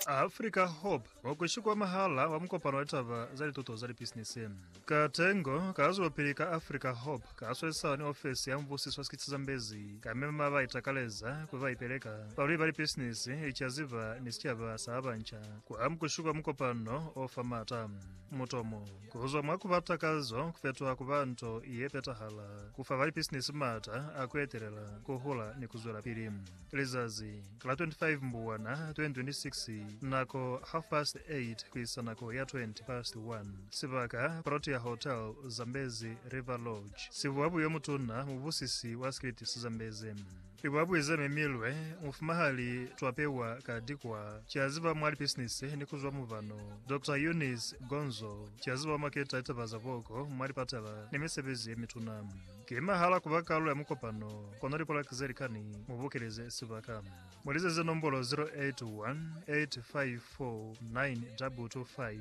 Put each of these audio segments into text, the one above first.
Africa Hope wa kushi kwa mahala wa mukopano wa litaba za lituto za lipisinisi. Ka tengo ka zwelopili ka Africa Hope ka swesisana ni ofesi ya mubusiso wa sikiti sa Zambezi ka mema ba itakaleza ku ba ipeleka, balwi ba lipisinisi, licaziba ni sicaba sa ba banca kwa mukushi kwa mukopano o fa maata. Mutomo, ku zwa mwa ku ba takazo ku fetoha ku ba nto ye petahala, ku fa ba lipisinisi maata a ku etelela, ku hula ni ku zwelapili. Lizazi la 25 Mbuwana 2026 Nako half past 8 ku isa nako ya 20 past 1 Sibaka Protea Hotel Zambezi River Lodge Sibuabu yo mutuna mubusisi wa Skiliti sa Zambezi Libuabui ze memilwe Mufumahali Twapewa Kadikwa Kiaziba mwa lipisinisi ni kuzwa mubano Doctor Eunice Gonzo Kiaziba wa maketa litaba za boko mwa lipatala ni misebezi ye mituna. Ki mahala kuba kalulo ya mukopano, kono lipolaki ze likani mubukeleze sibaka. Mulizeze nombolo 0818549225,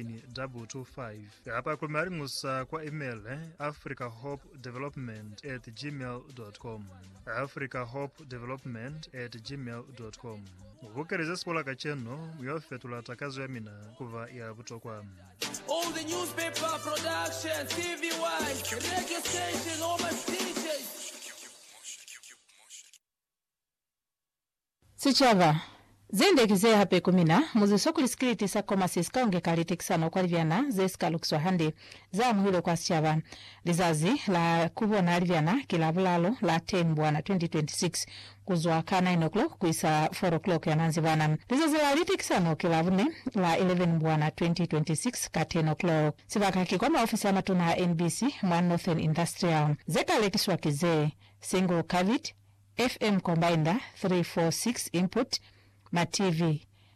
0818549225, kapa ku maliñusa kwa email africahopedevelopment at gmail dot com, africahopedevelopment at gmail dot com. Mubukeleze sipolaka cenu, mi yo fetula takazo yamina kuba ya butokwa. Sicaba, Ze nde ki ze hape ku mina, muziso kuli sikiliti sa Komasi si ka ungeka litekisano kwa libyana ze si ka lukiswa hande, za amuhilwe kwa sicaba. Lizazi la ku bona libyana ki la bulalo la Temmubwana 2026. ku zwa ka nine o'clock ku isa four o'clock ya manzibana. Lizazi la litekisano ki Labune, la 11 Mbwana 2026, ka ten o'clock. Sibaka ki kwa maofisi a matuna a NBC mwa Northern Industrial. Ze ka lekiswa ki ze, single cavity, FM combiner, 346 input, ma TV.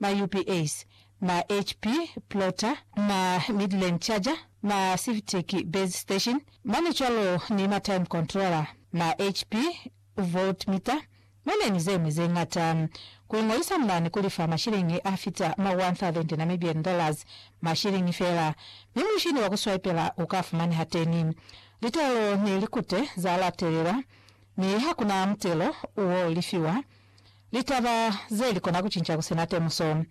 ma UPS, ma HP Plotter, ma Midland Charger, ma Sifteq Base Station, mane cwalo ni ma Time Controller, ma HP Voltmeter, mane ni zeñwi zeñata. Kuingolisa mane kulifa mashiliñi afita ma 1000 Namibian dollars, mashiliñi feela, mi mushini wa kuswaipela uka fumaneha teni. Litelo ni likute za latelelwa, mi hakuna mutelo uo lifiwa Litaba ze li kona ku cinca ku sina temuso.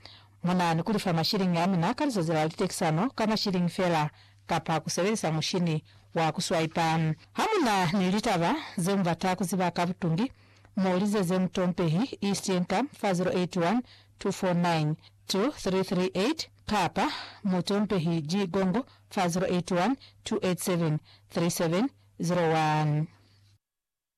Mu na ni ku lifa mashiliñi a mina ka lizazi la litekisano ka mashiliñi fela kapa ku sebelisa mushini wa ku swaipa. Ha mu na ni litaba ze mu bata ku ziba ka butungi, mu lizeze mutompehi East Income fa 0812492338 kapa mutompehi G Gongo fa 0812873701.